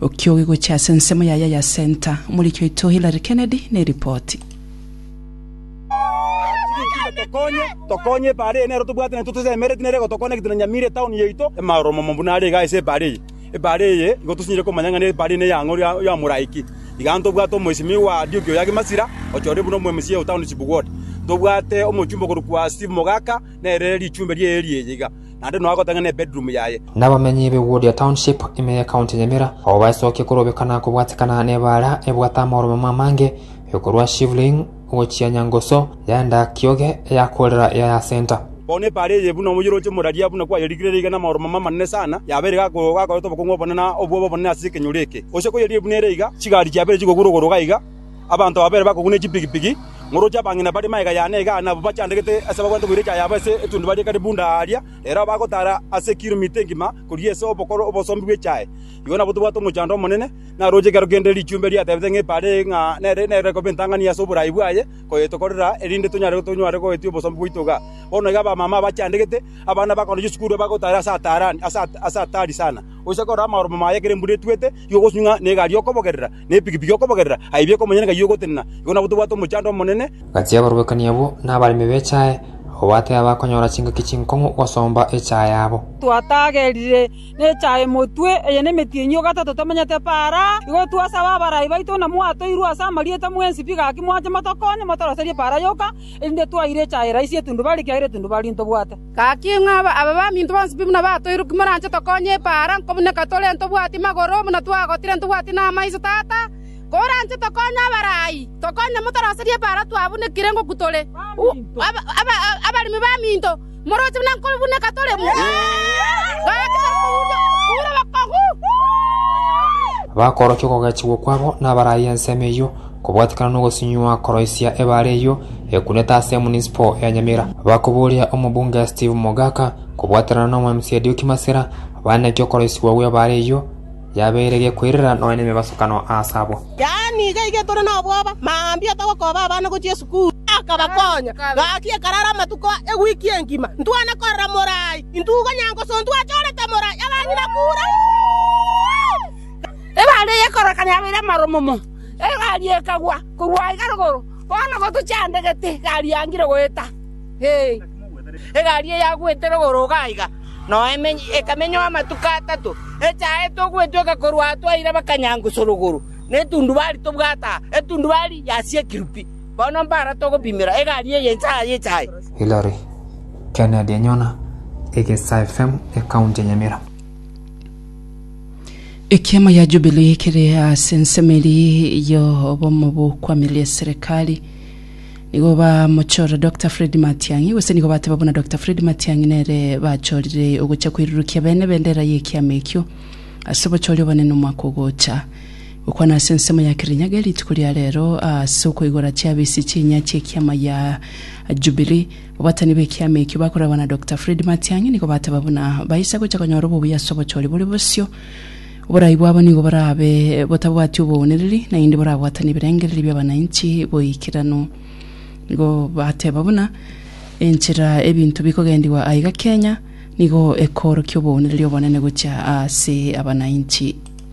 Okiogi gochia ase ensemo yaye ya Centre, omoriki oito Hillary Kennedy neripoti. Tokonye, tokonye epaara eye nero tobwate naye totesemereti nere egotoconnect na Nyamira etown yaito. Amaoro momo buna are iga ase epaara eye. Epaara eye igo tosinyire komanya ng'a nepaara eye ne yang'o ya Moraiki. Iga ntobwate omoisimigwa wa Adioki oyo age Masira, ochorire buna omo mca o township ward. Ntobwate omochumba okorokwa Steve Mogaka, nere richumbe riaye ri'eye iga. naende nonya gotang'ana ebedroom yaye. Nabamenyi be Wodia Township ime ye County Nyamira abwo baesokia korobeka na kobwatikana nebaara ebwate amaoromama amange korwa Shivling gochia Nyangoso yaenda Kioge eya Kolera ya ya Centre. Bono ebaara eye buna omoyoroche moraria buna kwayerikire reiga namaoromama amanene sana, yabeire gakoreta obokong'u obonene na obwoba obonene ase ekenyoro eke. Gose koyerie buna ere iga, chigari chiabeire chigokura igoro iga iga, Abanto babere bakoguna echipigipigi, ngoroche abang'ina bare magega y'ane egane abwo bachandegete ase bagwete boira echaye abo ase etundubari ekare bunda aaria, ere aho bagotaara ase ekiromita engima koria ase obokoro obosombi bw'echaye. Igo nabwo tobwate omochando omonene, narooche ekero kende richumbe riatebete ng'a epaara eye ng'a nere nere koba entang'ani ase oboraai bwaye koyetokorera, erinde tonyare tonyware goetia obosombi bwaito iga. Bono iga abamama abachandegete, abana bakoorwa chisukuru bagotaara ase ataarani ase ase ataari sana. Gochia korora amaoromo maye ekero embura etwete, igo ogosubie ng'a negari okobogerera, nepikipiki okobogerera, aye ebi ekomonyene ng'ai ogotenena, igo nabo tobwate omochando omonene. Gati aborwekani abwo nabaremi b'echae, abwo batebe abakonyora chingaki chinkong'u gosomba echae yabo. Twatagerire nechae motwe, eye nemetienyi o gatato tomenyete para, igo twasaba abarai baito buna mwatoirwe ase amarieta mwensi pi gaki mwanche motokonye motoroserie para yoka, erinde twaire echae raisi etundubarie, ekiagera etundubarie ntobwate. Gaki ng'a abe baminto bonsi pi buna batoirwe ki moranche tokonye epaara, nko buna ekatore ntobwati magoro, buna twagotire ntobwati namaiso, Tata, koranche tokonye abarai, tokonye motoroserie epaara twabunekire ngokw tore abaremi baminto, moroche buna nko buna ekatore ime. Gaki tokoruria obokongu. Bakorokia okogechigwa kwabo nabarai ensemo eyio. Kobwatekana nogosunywa koroisia ebaare eyio ekunete ase emunisipo ya Nyamira, bakoboria omobunge Steve Mogaka kobwaterana n'omwemc Edioki Masira bane naki okoroisigwa gw'ebaare eyio yabeire gekoirera nonya nemebasokano aase abwo. Yaani iga iga tore nobwoba, mambia togokoba abana gochia esukuru. Akabakonya, Gaki ekarara amatuko ewiki engima, ntwana korora morai, intwe igo nyangoso ntwachorete morai, abang'ina kure. Ebaare eye ekororekana yabeire amaro momo. egari ekagwa korwa aiga rogoro, bono gotochandegete egari yangire goeta. Egari eyagwete rogoro iga aiga noe ekamenywa amatuko atato, echaete ogwetweka korwa aa twaira bakanyangusa rogoro, na etundubari tobwate aa, etundubari yasiekirwe pi. Bono mbara togopimera egari eye inse aa yecha aye. Hillary, Kennedy enyona, Egesaa FM, Ekaunti ya Nyamira. Ekiama ya Jubilee kere ase ensemo eria y'obomo bw'okwamiria eserekari. Nigo bamochora Dr Fred Matiang'i gose nigo bateba buna Dr Fred Matiang'i nere bachorire ogocha koirurukia bene bendera y'ekiama ekio ase obochori obonene omwaka ogocha. Gokwana ase ensemo ya Kirinyaga rituko ria rero ase okoigora chiabisi chi'enya chi'ekiama ya Jubilee. Abatani b'ekiama ekio bakorerwa na Doctor Fred Matiang'i nigo bateba buna baisa gocha konyora obobuya ase obochori bore bosio. Oborai bwabo nigo borabe botabwati oboonereri, naende borabwatane ebirengererio bi'abananchi boikeranu. Nigo bateba buna enchera ebinto bikogendigwa aiga Kenya nigo ekoorokia oboonereri obonene gochia ase abananchi.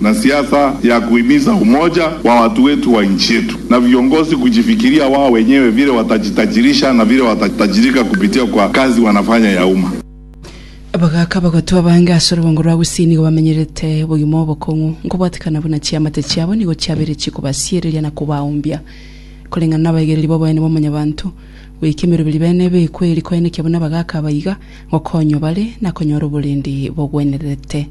na siasa ya kuhimiza umoja wa watu wetu wa nchi yetu na viongozi kujifikiria wao wenyewe vile watajitajirisha na vile watatajirika kupitia kwa kazi wanafanya ya umma. Abagaaka abagotwa abange ase orobongo rwa Gusii nigo bamenyerete obogima obokong'u, nkobwatekana buna chiamate chiabo nigo chiabeire chikobasiereria na kobaumbia. Koreng'ana n'abaigereria b'oboyani bwa Mwanyabaanto, goika emeroberi bene ebe ekweri koenekia buna abagaaka aba iga, ngokonywa bare na konyora oborendi bogwenerete.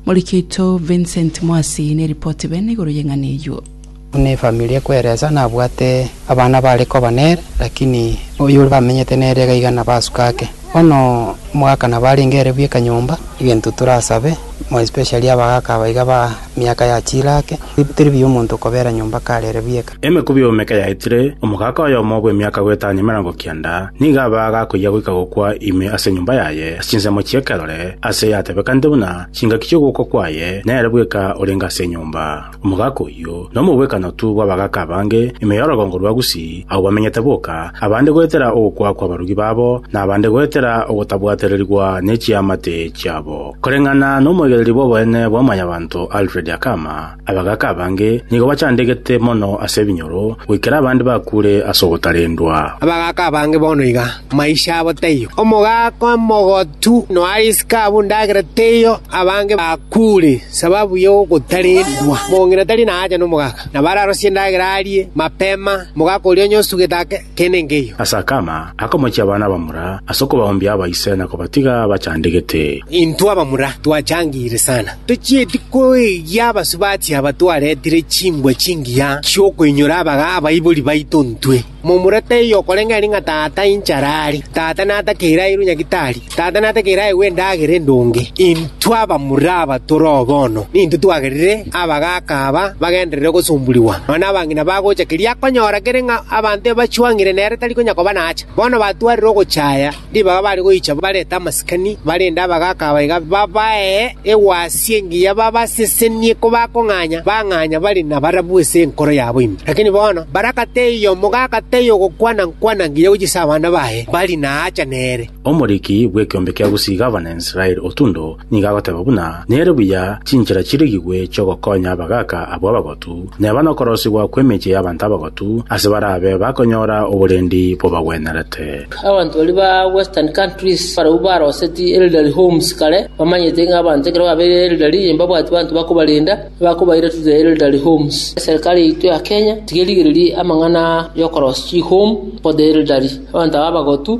Moriki oito Vincent Mwasi neripoti bene igoro y'eng'ana eyio. Buna efamiri ekweresa, nabwate abana bare koba nere, lakini oyore bamenyete nere iga iga nabasuka ake. Bono omogaka nabo arenge ere bweka nyomba, egento torasabe, more especially abagaka aba iga ba miaka ya chilake, teri buya omonto okobera nyomba kare ere bweka. Emekubi y'omomeka yaetire, omogaka oyomo bw'emiaka goetania emerongo kianda nigo abe agakoyia goika gokwa ime ase enyomba yaye ase chinsemo chi'ekerore, aase yatebekanete buna chingaki chi'ogokwa kwaye, nere bweka orenge ase enyomba. Omogaka oyio nomobwekanotu bw'abagaka abange ime y'orogongo rwa Gusii, agwo bamenyete boka, abande goetera ogokwa kw'abarugi babo, na abande goetera ogotabwatererigwa ne chiamate chiabo. Koreng'ana nomoigereria bw'oboene bwa mwanyabanto Alfred Akama, Abagaaka abange nigo bachandegete mono ase ebinyoro, goikera abande bakure ase ogotarendwa. Abagaaka abange bono iga, maisha abo taiyo. Omogaaka omogotu noariske abwo endagera teiyo, abange bakure sababu y'ogotarendwa. Mong'ina tari naacha nomogaaka, nabo ararosie endagera arie mapema, omogaaka oria onye osugete ake. tenengeyo. Ase akama, akamochia abana abamura ase okobaoombia aba ise na kobatiga bachandegete. Intwe abamura twachangeire sana, tochieti koegia abasubati aba twaretire chimbwa chingiya chi'okoinyora abaga abaibori baito intwe. Momura taiyo okoreng'ana ng'a tata inchara are, tata natakeire airwe nyagitari. Tata nategeere aegwe endagera endonge. Intwe abamura aba tore oo bono, nintwe twagerire abagaaka aba bagenderere gosomborigwa, nonya abang'ina bagocha keria akonyora kere ng'a abanto ebachwang'ire nere tari konya koba naacha. Bono batwarire ogocha aya, ribaga bare goicha barete amasikani, barende abagaaka aba iga babae egwasi engiya babasesenie kobakong'anya, bang'anya bare nabarabwo ase enkoro yabo ime. Lakini bono barakata eyiya omogaaka taiyo ogokwana-nkwana ngiya gochia ase abana baye bari naacha nere. Omoriki bw'ekeombe kia gosiiga Abanaisraeli otundo nigo agoteeba buna, Nere buya chinchera chirigigwe chi'ogokonya abagaaka abwo abagotu, neba nokorosigwa kw'emechie y'abanto abagotu, ase barabe bakonyora oborendi bobagwenerete. Abanto baria ba Western Countries barabwo baroseti Elderly Homes kare, bamanyete ng'a abanto ekero babeire elderly mbabwati banto bakobarenda, bakobaira to the Elderly Homes. Eserikari yaito ya Kenya tiga erigererie amang'ana y'okorosia chi-home for the elderly, abanto aba abagotu,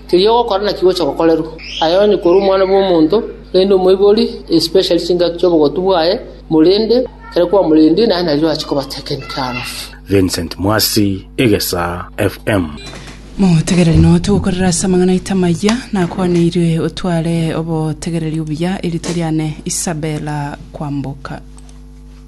Keria ogokora naki gocha gokorerwa. Aya onye korwa Omwana bw'omonto, rende omoibori, especially chingaki chi'obogotu bwaye, morende, ekero kwamorendie, naye nario ache kobatekenik arafu. Vincent Mwasi, Egesaa FM. Motegereri noo togokorera ase amang'ana aito amaya nakwaneirwe otware obotegereri obuya erito riane Isabella Kwamboka.